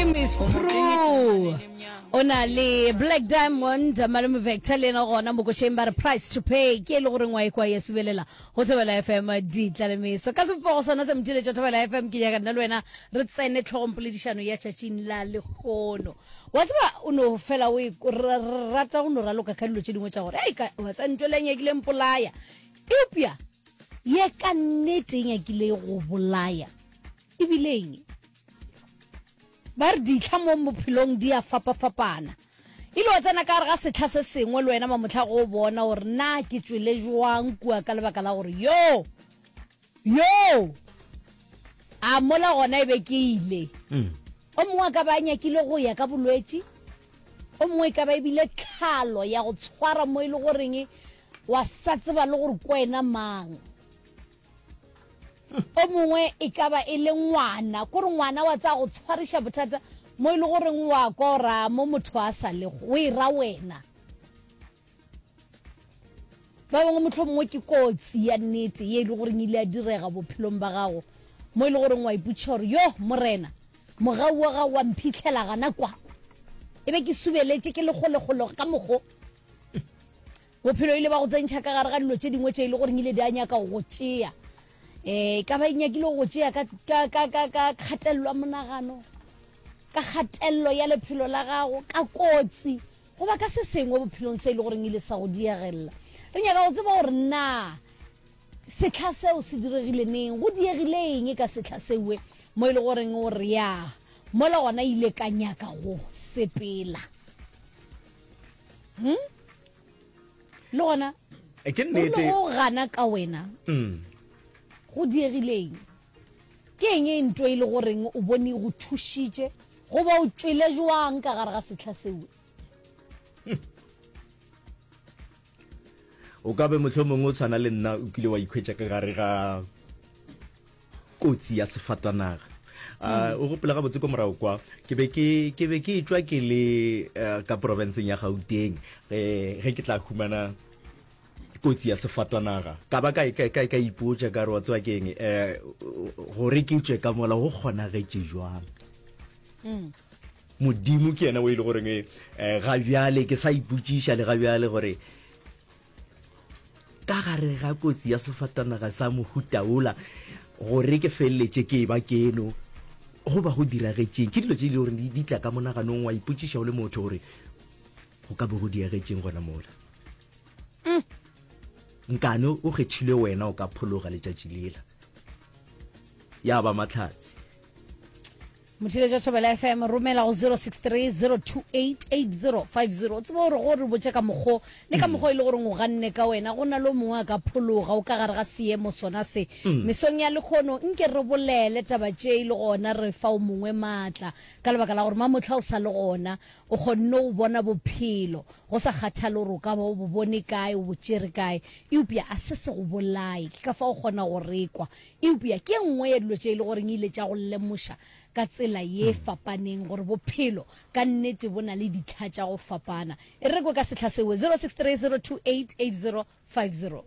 True. o na le black diamond malome vector le ena gona mokošeng ba re price to pay ke e le goreng wa ekwa ya sebelela go thobela fm ditlalemeso ka sepogo sona se mothiletša thobela fm ke nyaka nna le wena re tsene tlhogong poledišano ya tšatšing la lekgono wa tseba o no fela o e- o ra- ra- rata go no raloka ka dilo tše dingwe tša gore ei ka- wa tsa ntho le nyakile mpolaya eupša ye ka nnete e nyakile go bolaya e bileng ba re ditlha mo bophelong di a fapa-fapana e le o tsena ka gare ga setlha se sengwe le wena mamotlha go bona gore na ke tswele jwang kua ka lebaka la gore yo yo a mola gona e be ke ile mm. o mongwe a ka ba a nyakile go ya ka bolwetse o mongwe e ka ba ebile tlhalo ya go tshwara mo e le goreng wa sa tseba le gore ko wena mang o mongwe e ka ba e le ngwana kore ngwana wa tsa go tshwariša bothata mo e le goreng wa kora mo motho a sa lego o e ra wena ba bangwe motlho mongwe ke kotsi ya nnete ye e le goreng ile ya direga bophelong ba gago mo e le goreng wa ipotšiša gore yo morena mogau wa gago wa mphitlhela gana kwa e be ke subeletše ke lekgolegolo ka mogo Bophelo e ile ba go tsentšha ka gare ga dilo tše dingwe tše e le gore ile di a nyaka go go tšea. E ka ba e nyakile go go tšea ka, ka, ka, ka, ka kgatelelo ya monagano, ka kgatelelo ya lephelo la gago, ka kotsi, goba ka se sengwe bophelong se e le goreng ile sa go diegelela. Re nyaka go tseba gore na sehla seo se diregile neng, go diegile eng ka sehla sewe mo e le goreng o re ya mola gona ile ka nyaka go sepela. hmm? le gona eh, ke nnete go gana ka wena mm. go diegileng ke eng e nto e le goreng o bone go thušitše goba o tšwele jwang ka gare ga setlha seo hmm. o ka be motlho mongwe o tshwana le nna o kile wa ikhwetša ka gare ga kotsi ya sefatanaga a mm. o gopela gabotse ko morago kwa ke be ke be ke etswa ke le eh, ka porofenseng ya gauteng eh, ge ke tla humana kotsi ya sefatanaga ka ba ka ipotsa ka re wa tsewa keng um eh, gore ke tswe ka mola go kgonagetse jwang mm. modimo ke yena o e le goreng um ga bjale ke sa ipotsiša le ga bjale gore ka gare ga kotsi ya sefatanaga sa mohutaola gore ke feleletše ke ba keno go ba go diragetšeng ke dilo tse e le gore di tla ka monaganong wa ipotšiša o le motho gore go ka bo go diagetšeng gona mola mm. nkane o kgethile wena o ka phologa letšatši lela ya ba matlhatsi motheletša thobela fm romela go 0630288050 o tseba gore go re botse ka mokgo le ka mm. mokgo e le goreng o ganne ka wena go na le mongwe a ka phologa o ka gare ga seemo sona se mm. mesong ya lekgono nke re bolele taba tše e le gona re fa o mongwe maatla ka lebaka la gore mamotlha o sa le gona o kgonne go bona bophelo go sa kgathale gore o ka ba o bo bone kae o bo tšere kae eupša a se se go bolaye ke ka fa o kgona go rekwa Eupja ke e nngwe ya dilo tše e le goreng e ile tša go lemoša ka tsela ye e fapaneng gore bophelo ka nnete bo na le ditlha tša go fapana. E re re kwe ka sehla seo, 0630288050.